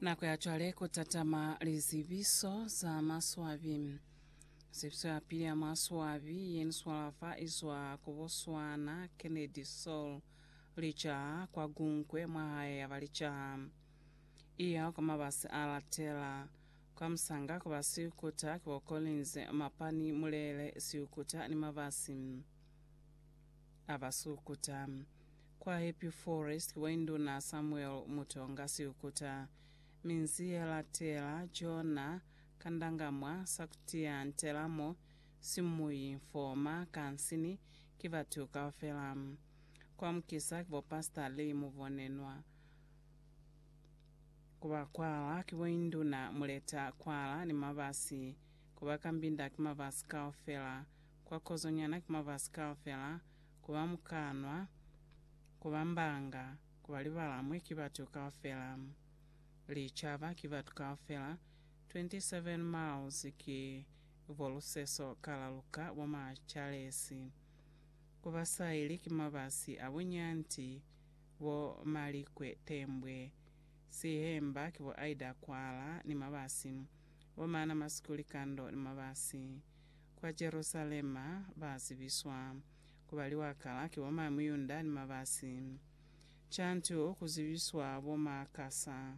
Nako ya cwale ku tatama lizibiso za maswabi. Zibiso ya pili ya maswabi ye ni swala fa i zwa ku Botswana, Kennedy Saul Lijaha, kwa Gunkwe, mwa hae ya ba Lijaha. I ya kwa mabasi a latela. Kwa musanga ku ba Siukuta, ki bo Collins, Mapani, Mulele, Siukuta ni mabasi a Basukuta. Kwa Happy Forest kwa Induna Samuel Mutonga Siukuta, Minzi ye Latela, Jonah Kandangamwa, Sakutia Ntelamo, Simuyi Mfoma, Kansini, ki batu kaufela. Kwa Mukisa ki bo Pastor Lee Mubonenwa. Ku ba Kwala ki bo Induna Muleta Kwala ni Mabasi. Ku ba Kambinda ki Mabasi kaufela. Kwa Kozonyana ki Mabasi kaufela. ku ba mukanwa, ku ba mbanga, ku ba libalamwi ki batu kaufela. Licaba ki batu kaufela, 27 miles ki bo luseso ka la luka bo ma Charlesi. Ku ba saili ki mabasi a bunyanti, bo malikwe tembwe, sihemba ki bo aida kwala ni mabasi, bo mana masiku likando ni mabasi. Kwa Jerusalema ba zibiswa ku ba liwakala ki bo mañi Muyunda ni mabasi. Cantu ku zibiswa bo ma kasa,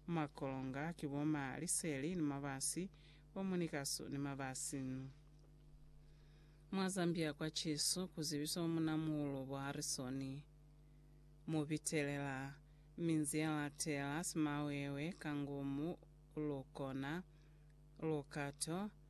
ma kolonga ki bo ma liseli ni mabasi, bo munikasu ni mabasi. Mwa Zambia kwa Cisu ku zibiswa bo munamuulu bo Harisoni. Mu bitelela minzi ya latela, simawewe, kangumu, lukona, lukato,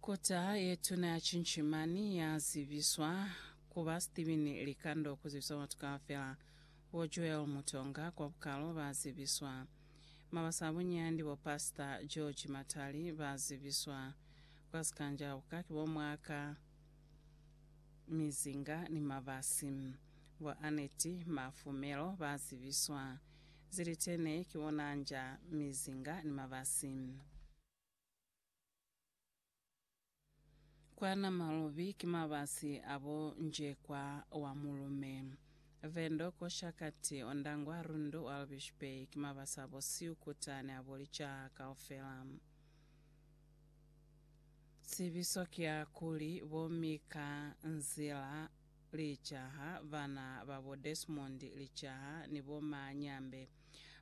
Kota ye tuna ya Cinchimani ya zibiswa ku ba Steven Likando ku zibisa batu kaufela. Bo Joel Mutonga kwa bukalo ba zibiswa. Mabasa a bunyandi bo Pasita George Matali ba zibiswa. Kwa Sikanjabuka ki bo Mwaka Mizinga ni Mabasi. Bo Annette Mafumelo ba zibiswa. zilitene, ki ona anja, mizinga, ni mabasi. Kwa Namalubi ki mabasi a bo Njekwa wa Mulume, Vendo, Koshakati, Ondangwa, Rundu, Walvish Bay, ki mabasi a bo Siukuta ni a bo Licaha kaufela. Zibiso ki ya kuli, Bo Mika Nzila, Licaha, Bana ba bo Desmond Licaha ni bo Ma Nyambe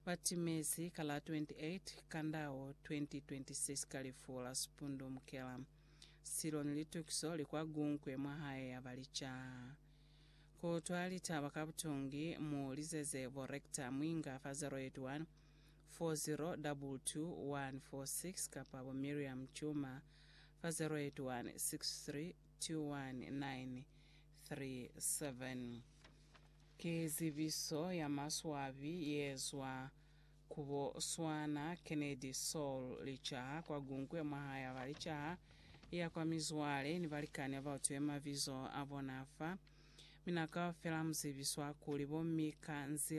ba timezi ka la 28 Kandao 2026 ka lifu la Sphundu Mkela. Silo ni litukiso li kwa Gunkwe mwa hae ya ba Licaha. Ku utwa litaba ka butungi, mu lizeze bo Rector Mwinga fa 081 4022 146 kapa bo Miriam Tshuma fa 081 63 21937 Ki zibiso ya maswabi yeezwa ku bo Swana, Kennedy, Saul, licaha kwa Gunkwe mwahae aba licaha ya kwa mizwale ni balikani abautwiwe mabizo abona fa. Mi na kaufela muzibiswa kuli bo Mika nzila